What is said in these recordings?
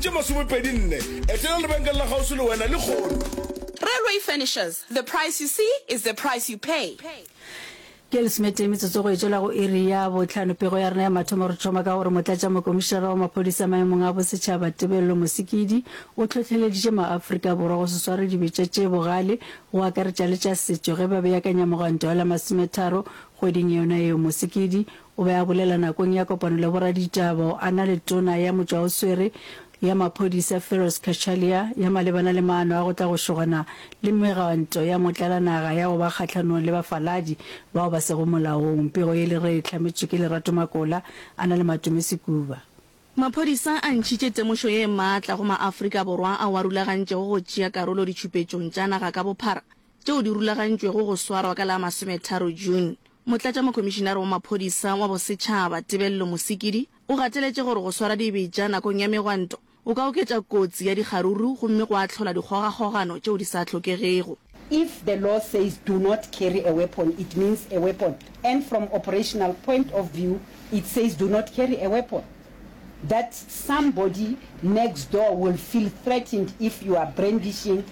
Tše masomepedi nne. Etela lebenkele la kgauswi le wena lehono. Railway Furnishers, the price you see is the price you pay. Ke lesomete metsotso go e tšwela go iri ya bohlano pego ya rena ya mathomo re thoma ka gore motlatša mokomišinara wa maphodisa maemong a bosetšhaba Tebello Mosikidi o tlhohleleditše maAfrika Borwa go se sware dibetša tše bogale go akaretša le tša setšo ge ba beakanya mogwanto wa la masometharo kgweding yona yeo Mosikidi O be a bolela nakong ya kopano le boraditaba a na le tona ya motšwaoswere ya maphodisa Feroz Cachalia ya malebana le maano a go tla go šogana le megwanto ya motlalanaga ya go ba kgahlanong le bafaladi bao ba sego molaong. Pego ye le re e hlametšwe ke Lerato Makola a na le Matome Sekuba. Maphodisa a ntšhitše temošo ye maatla go Maafrika Borwa ao a rulagantšego go tšea karolo ditšhupetšong tša naga ka bophara tšeo di rulagantšwego go swarwa ka la masometharo June, Motlatšamokhomišinare wa Maphodisa wa Bosetšhaba, Tebello Mosikidi, o gateletše gore go swara dibetša nakong ya megwanto go ka oketša kotsi ya dikgaruru gomme gwa hlola dikgogakgogano tšeo di sa hlokegego. If the law says do not carry a weapon it means a weapon and from operational point of view it says do not carry a weapon that somebody next door will feel threatened if you are brandishing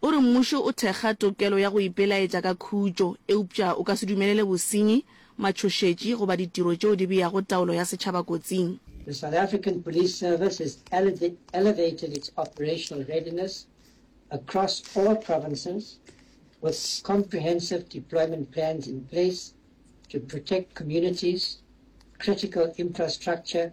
O re mmušo o thekga tokelo ya go ipelaetša ka khutšo, eupša o ka se dumelele bosenyi, matšhošetši goba ditiro tšeo di beago taolo ya setšhaba kotsing. The South African Police Service has elevated its operational readiness across all provinces with comprehensive deployment plans in place to protect communities, critical infrastructure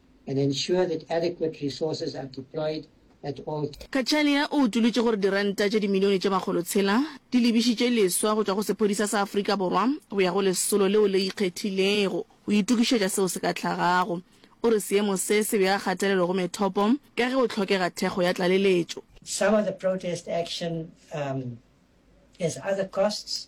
and ensure that adequate resources are deployed at all Cachalia o utolotše gore diranta tše dimilione tše makgolo tshela di lebišitše leswa go tšwa go sephodisa sa Afrika Borwa go ya go lesolo leo le ikgethilego go itokišetša seo se ka tlhagago. O re seemo se se bea kgatelelo go methopo ka ge go hlokega thekgo ya tlaleletšo. Some of the protest action um, has other costs.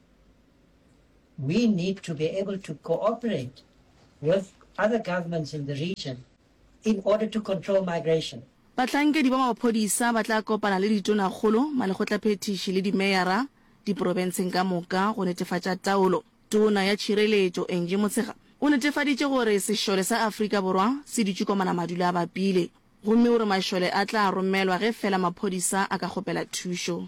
We need to be able to cooperate with other governments in the region in order to control migration. Bahlankedi ba maphodisa ba tla kopana le ditonakgolo, malekgotlaphethiši le dimeyara diprobenseng ka moka go netefatša taolo. Tona ya Tšhireletšo, Angie Motshekga, o netefaditše gore sešole sa Afrika Borwa se dutše kwa Manamadula a bapile gomme o re mašole a tla romelwa ge feela maphodisa a ka kgopela thušo.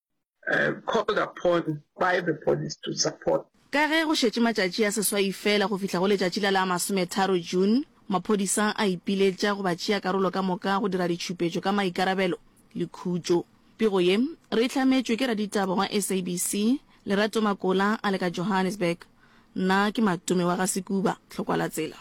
called upon by the police to support. Ka ge go šetše matšatši a seswai feela go fihla go letšatši la la masometharo June, maphodisa a ipiletša go batšeakarolo ka moka go dira ditšhupetšo ka maikarabelo le khutšo. Pego ye re e hlametšwe ke raditaba wa SABC, Lerato Makola a le ka Johannesburg. Nna ke Matome wa ga Sekuba Tlhokwalatsela.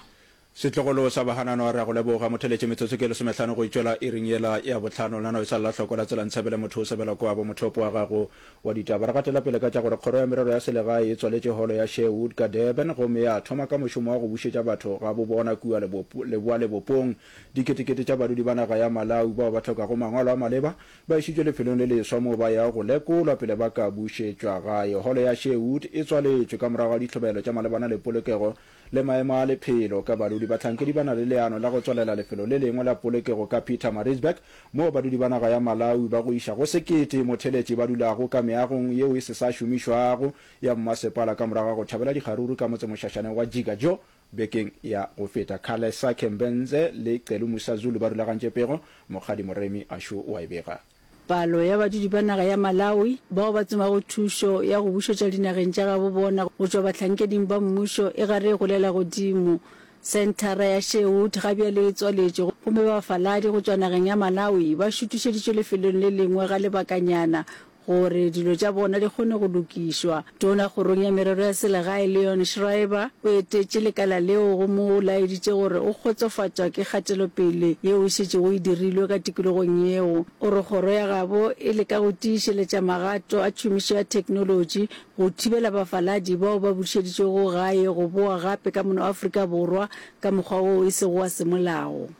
Setlogolo sa Bahananwa, Re a go leboga. Motheletše, metsotso ke lesomehlano go itšwela iring yela ya bohlano. Lena e sa lla hloko la tsela Ntshabile motho o sebela kwa bo mothopo wa gago wa ditaba. Re gatela pele ka tša gore Kgoro ya Merero ya Selegae e tswaletše Holo ya Sherwood ka Durban gomme ya thoma ka mošomo wa go bušetša batho gabobona kua Leboalebopong. Diketekete tša badudi ba naga ya Malawi bao ba hlokago mangwalo a maleba ba išitšwe lefelong le leswa moo ba yago go lekolwa pele ba ka bušetšwa gae. Holo ya Sherwood e tswaletšwe ka morago ga ditlhobaelo tša malebana le polokego le maemo a lephelo ka badudi. Bahlankedi ba na le leano la go tswalela lefelo le lengwe la polokego ka Pietermaritzburg, moo badudi ba naga ya Malawi ba go iša go sekete motheletši ba dulago ka meagong yeo e se sa šomišwago ya mmasepala ka morago ga go tšhabela dikgaruru ka motsemošašaneng wa Jigajo bekeng ya go feta. Khalesa Khembenze le Celu Musazulu ba rulagantše pego, Mokgadi Moremi a šo wa e bega. Palo ya badudi ba naga ya Malawi bao ba tsomago thušo ya go bušetša dinageng tša gabo bona go tšwa bahlankedi ba mmušo e gare e golela godimo. Senthara ya Sherwood ga bjale e tswaletšwe gomme bafaladi go tšwa nageng ya Malawi ba šutišeditšwe lefelong le lengwe ga lebakanyana gore dilo tša bona di kgone go lokišwa. Tona Kgorong ya Merero ya Selegae Leon Schreiber o etetše lekala leo go mo laeditše gore o kgotsofatšwa ke kgatelopele yeo e šetšego e dirilwe ka tikologong yeo. O re kgoro ya gabo e leka go tiišeletša magato a tšhomišo ya theknolotši go thibela bafaladi bao ba bušeditšwego gae go boa gape ka mono Afrika Borwa ka mokgwa woo e sego wa semolao.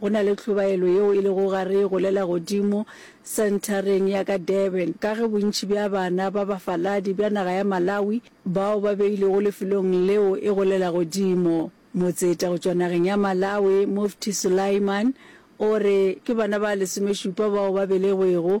Go na le tlhobaelo yeo e lego gare go le la godimo senthareng ya ka Durban ka ge bontši bja bana ba bafaladi bja naga ya Malawi bao ba beilwego lefelong leo e go le la godimo. Motseta go tšwa nageng ya Malawi Mufti Sulaiman o re ke bana ba lesomešupa bao ba belegwego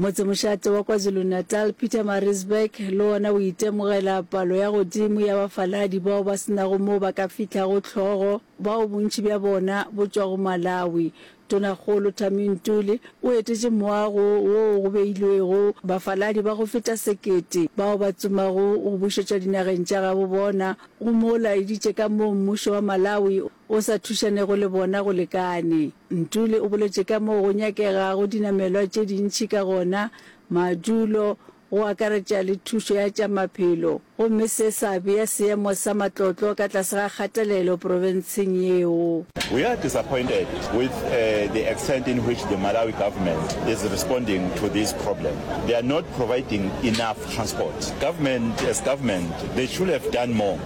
Motsemošate wa KwaZulu-Natal, Pietermaritzburg, le wona o itemogela palo ya godimo ya bafaladi bao ba se nago moo ba ka fihlago hlogo, bao bontši bja bona bo tšwago Malawi. Tonakgolo Thami Ntuli o etetše moago woo go beilwego bafaladi ba go feta sekete bao ba tsomago go bušetšwa dinageng tša gabo bona, go mo laeditše ka moo mmušo wa Malawi o sa thušanego le bona go lekane. Ntuli o boletše ka moo go nyakegago dinamelwa tše dintši ka gona, madulo, go akaretša le thušo ya tša maphelo, gomme se sa bea seemo sa matlotlo ka tlase ga kgatelelo profenseng yeo. We are disappointed with the extent in which the Malawi government is responding to this problem. They are not providing enough transport. Government as government, they should have done more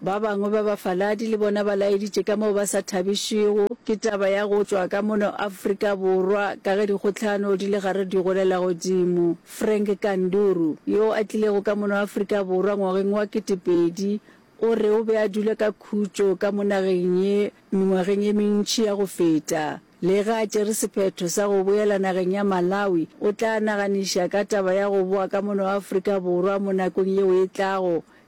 Ba bangwe ba bafaladi le bona ba laeditše ka moo ba sa thabišwego ke taba ya go tšwa ka mono Afrika Borwa ka ge dikgohlano di le gare di golela godimo. Frank Kanduru, yo a tlilego ka mono Afrika Borwa ngwageng wa ketepedi, o re o be a dula ka khutšo ka mo nageng ye mengwageng ye mentši ya go feta. Lega a tšere sephetho sa go boela nageng ya Malawi, o tla naganiša ka taba ya go boa ka mono Afrika Borwa mo nakong yeo e tlago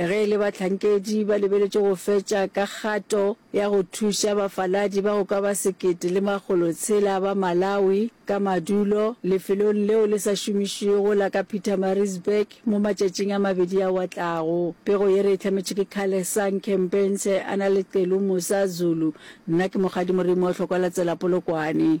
Ge e le bahlankedi ba lebeletše go fetša ka kgato ya go thuša bafaladi ba go ka ba sekete le makgolo tshela ba Malawi ka madulo lefelong leo le sa šomišwego la ka Pietermaritzburg mo matšatšing a mabedi ao a tlago. Pego ye re e hlametšwe ke Khalesa Nkhempense a na le Celu Musa Zulu. Nna ke Mokgadi Morimo Hlokoalatsela Polokwane.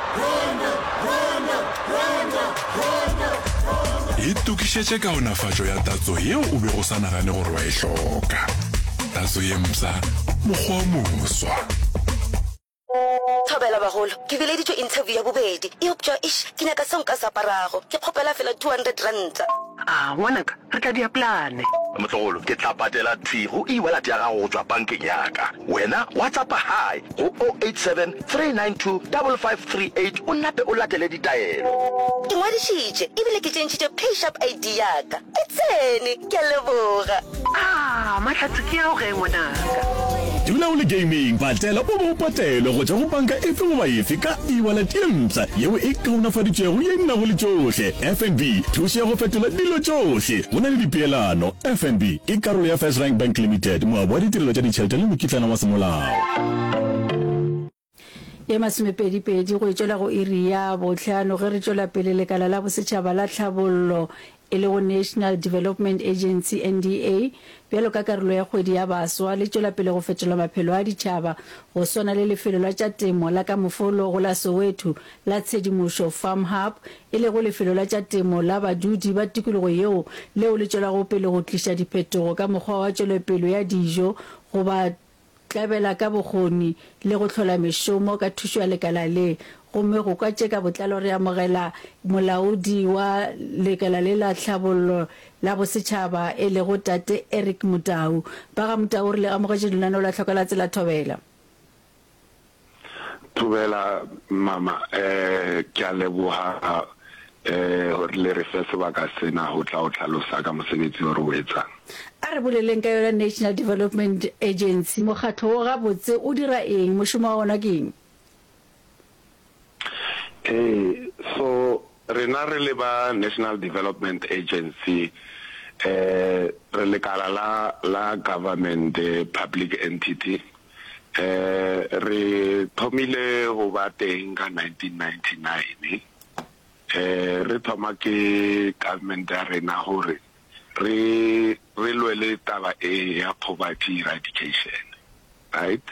Itokišetše kaonafatšo ya tatso yeo o bego o sa nagane gore wa e hloka. Tatso ye mpsha, mokgwa o moswa. Thobela bagolo, ke bileditšwe interview ya bobedi eupša eish ke nyaka seo nka se aparago. Ke kgopela feela two hundred ranta. A ngwanaka, re tla dia plane. Motlogolo, ke tla patela thwi go ewallet ya gago go tšwa bankeng ya ka. Wena wa tsa pa high. go 087 392 5538 o nape o latele ditaelo. Ke ngwadišitše e bile ke tšentšhitše PaySharp ID ya ka. E tsene! Ke a leboga. Aa, mahlatse ke ao ge, ngwanaka? Dula o le gaming, patela o bo o patelwe go tšwa go panka efe goba efe ka e-wallet ye mpsha yeo e kaonafaditšwego ye e nago le tšohle. FNB, thušo ya go fetola dilo tšohle go na le dipeelano. FNB ke karolo ya FirstRand Bank Limited, moabi wa ditirelo tša ditšhelete le mokitlana wa semolao. ye masomepedipedi go itšwela go iri ya bohlano ge re tšwela pele lekala la bosetšhaba la tlhabollo e lego national development agency nda bjalo ka karolo ya kgwedi ya baswa le tšwela pele go fetola maphelo a ditšhaba go swana le lefelo la tša temo la ka mofolo go la soweto la tshedimošo farm hub e lego lefelo la tša temo la badudi ba tikologo yeo leo le tšwelago pele go tliša diphetogo ka mokgwa wa tšwelepelo ya dijo go ba tlabela ka bokgoni le go hlola mešomo ka thušo ya lekala le, gomme go kwa tše ka botlalo re amogela Molaodi wa Lekala le la Tlhabollo la Bosetšhaba e lego Tate Eric Motau. Ba ga Motau re le amogetše lenaneo la Tlhoka la Tsela Thobela. Thobela mama ke a leboga gore le re fe sebaka sena go tla go tlhalosa ka mosebetsi o re o etsang. A re boleleng ka yona National Development Agency. Mokgatlo wo gabotse o dira eng? Mošomo wa wona ke eng? Ee, so Rena re le ba National Development Agency re lekala la la government public entity re thomile go ba teng ka 1999 re thoma ke government ya rena gore re re lwele taba e ya poverty eradication right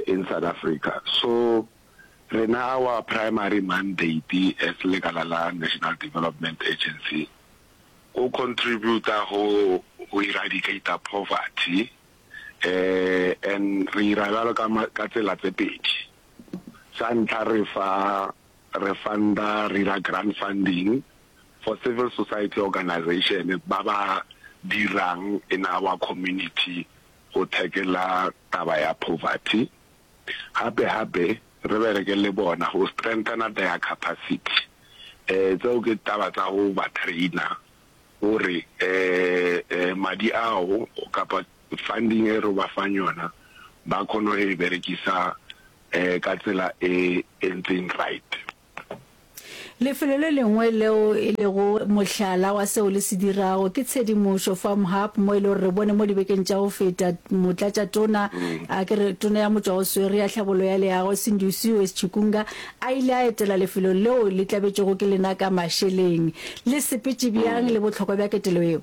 in South Africa so Rena our primary mandate as lekala la National Development Agency ko contributa go go eradicator poverty um and re ira bjalo ka ka tsela tse pedi. Sa ntlha re fa re funda re ira grant funding for civil society organization ba ba dirang in our community go tackle-a taba ya poverty. Gape gape re bereke le bona go strengthener their capacity. Um tseo ke taba tsa go ba trainer gore um madi ao kapa funding e ro ba fang yona ba khone go e berekisa um ka tsela e e ntseng right. Lefelo le lengwe leo e lego mohlala wa seo le se dirago ke Tshedimošo Farm Hub mo e le gore re bone mo dibekeng tša go feta Motlatšatona a ke re tona ya motšwaoswere ya tlhabollo ya leago Sindusiwe Schikunga a ile a etela lefelo leo le tlabetšego ke lena ka mašeleng. Le sepetše bjang le bohlokwa bja ketelo yeo?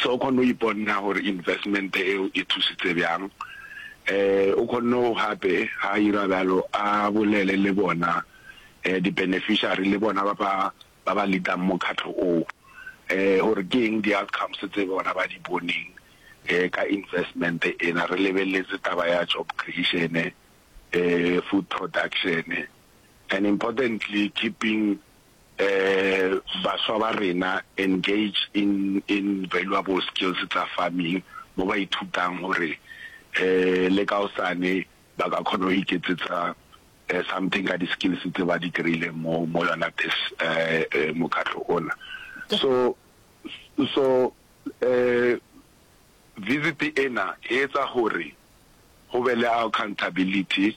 So o khonne go iponna gore investment eo e thusitse byang. Um o khonne go gape ha ira byalo a bolele le bona um di beneficiary le bona ba ba ba ba leadang mokhatlo o um gore ke eng di outcomes tse bona ba di boneng um ka investment ena re lebeletse taba ya job creation, um food production and importantly keeping Baswa ba rena engage in in valuable skills tsa farming mo ba ithutang gore le ka osane ba ka kgona go iketsetsa something ka di skills tse ba di kry-ileng mo mo yona this mokgatlho ona. So so visit ena e etsa gore go be le accountability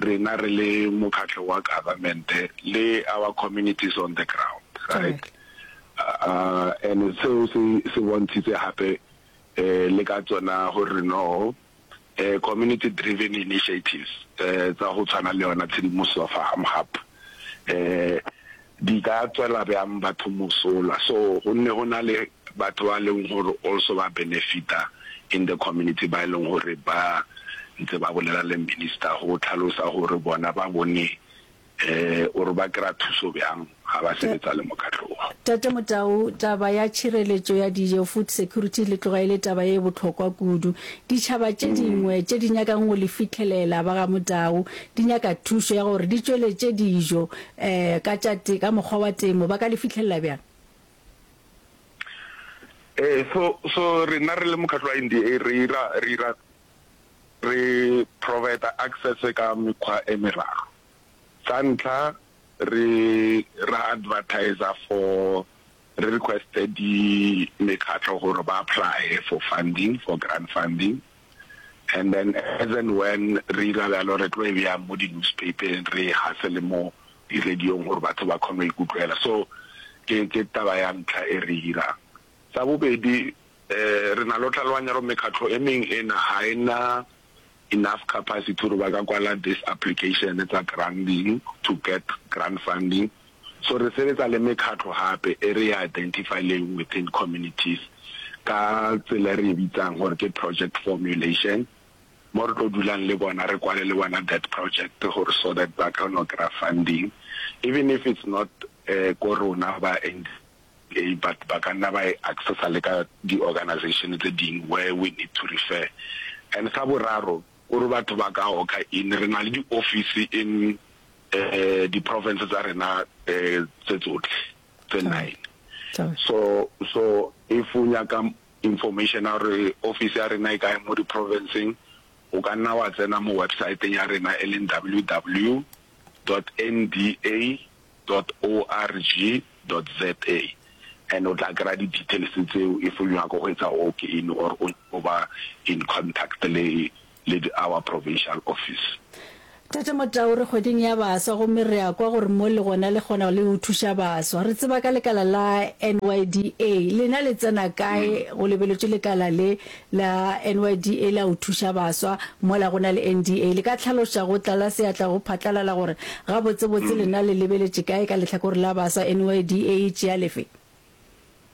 rena re le mokgatlo wa government le our communities on the ground right uh, and seo se se bontshitse hape eh le ka tsona gore no eh community driven initiatives eh tsa go tshwana le yona tshedimoso of ham hub eh di ka tswela bjang batho mosola so go nne go na le Batho ba leng gore also ba benefita in the community ba e leng gore ba ntse ba bolela le minister go tlhalosa gore bona ba bone or ba kry-a thuso byang ga ba sebetsa le mokgatlo o. Tate Motau, taba ya tšhireletšo ya dijo, food security, le tloga e le taba ye bohlokwa kudu. Ditšhaba tše dingwe tše di nyakang go le fihlelela ba ga Motau di nyaka thušo ya gore di tšweletše dijo ka tša ka mokgwa wa temo, ba ka le fihlelela byang? Eh, so so rena re le mokgatlo wa nda re ira re ira re provider access ka mekgwa e meraro sa ntlha re ra advertiser for re requested di mekgatlo gore ba apply for funding for grant funding and then as and when re ira bjalo re tlo e bjang mo di-newspapeng re hase le mo di radio-ng gore batho ba kgone go e kutlwela so ke ke taba ya ntlha e re dirang. Sa bobedi um re na le go tlhaloganya gore mekgatlho e mengwe e na ga e na enough capacity gore ba ka kwala this application tsa granding to get grand funding so re sebetsa le mekgatlho gape e re ya identify leng within communities ka tsela e re e bitsang gore ke project formulation. mo re tlo dulang le bona re kwale le bona that project gore so that ba ka no kry-a funding even if it's not ko rona ba NDA but ba ka nna ba e accessa le ka di-organization tse ding where we need to refer. And sa boraro gore batho ba ka oka in re na le di-office in di-province tsa rena tse tsotlhe tse nine so so if o nyaka Information ya gore ofisi ya rena e kae mo diprofenseng, o ka nna wa tsena mo websaeteng ya rena e leng ww dot nda dot org dot za and o tla kry-a di-details tseo if o nyaka go etsa walk-in or o nyaka go ba in contact le le di our provincial office. Tate Motau, re kgweding ya baswa gomme re a kwa gore mo le gona le kgona le go thuša baswa. Re tseba ka lekala la NYDA. Lena le tsena kae go lebeletšwe lekala le la NYDA la go thuša baswa mola go na le NDA? Le ka tlhaloša go tlala seatla go phatlalala gore gabotsebotse lena le lebeletše kae ka lehlakore la baswa, NYDA e tšea lefe?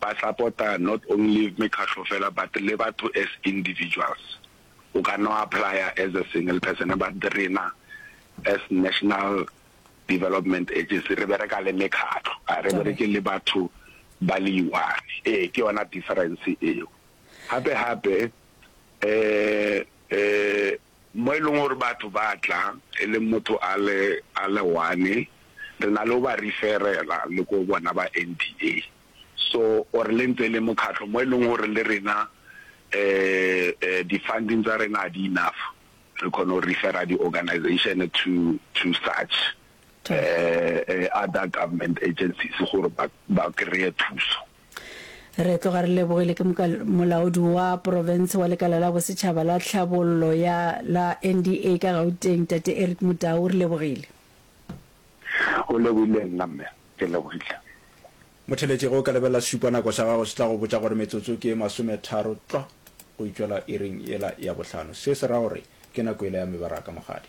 Ba support-a not only mekgatlo fela but le batho as individuals. O ka no apply-a as a single person but rena as National Development Agency re bereka le mekgatlo, ga re bereke le batho ba le i-one. Ee, ke yona difference eo. Gape-gape um. Mo e leng gore batho ba tla e leng motho a le a le one re na le go ba referela le ko bona ba NDA so or le ntse le mokgatlho mo e leng gore le rena di funding tsa rena ga di enough re kgona go refera di organization to to such other government agencies gore ba kry-e thuso. Re tloga re lebogile ke moka molaodi wa porofense wa lekala la bosetšhaba la tlhabollo ya la NDA ka Gauteng, Tate Eric Mudau. Re lebogile. O lebogile nna mme. Ke lebogile. Motheletši, ge o ka lebelela sešupanako sa gago, se tla go botša gore metsotso ke ye masometharo tlwa go e tšwela iring yela ya bohlano. Se se ra gore ke nako yela ya mebaraka, mogadi.